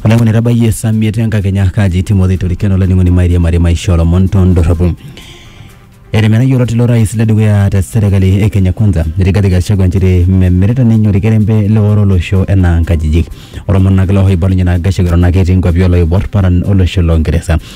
oleng'oni etabayie esamiet enkakenya kaji timothy toriken olainining'oni mairiamari maisha olomon tondorropu etimira yiolot ilo rais ledukuya te serkali e kenya kwanza rigathi gachagua nchere memirita ninye orkerembe leoro olosho enaa nkajijik olomonak looibalunye naa gachagua eton ake etii nkuapi oloibor paran olosho longeresa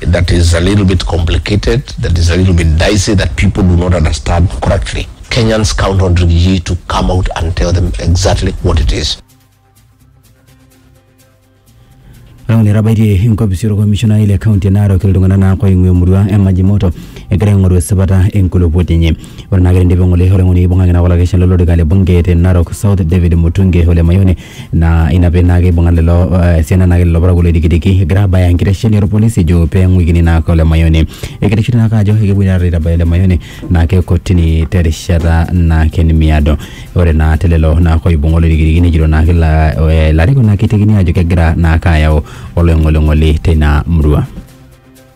that is a little bit complicated, that is a little bit dicey, that people do not understand correctly. Kenyans count on Rigiji to come out and tell them exactly what it is. Rauni etabaitie enkopisi olkomishonai le kaunti e Narok iltung'anak naa oing'ua emurua e Majimoto egira aing'oru esipata enkulupuoni enye. Ore naa ketindipa ng'ole ore ng'ole eibung'aki naa olakeshani lolorika le bunge te Narok South David Mutunge ole Mayoni naa ina pee naa keibung'a lelo eh, esiana naake lelo parakuo loidikidiki egira abaya enkitesheni orpolisi ejo pee eng'uikini naake ole Mayoni ekereshu naake ajo ekepuoi taata aitabaya ole Mayoni naake kotini terishata naake nemiado ore naa te lelo naake oibung'a oloidikidiki nejito naake ila- eh, ilarikok naake eitekini ajo kegira naake ayau oloing'oling'oli teina murua.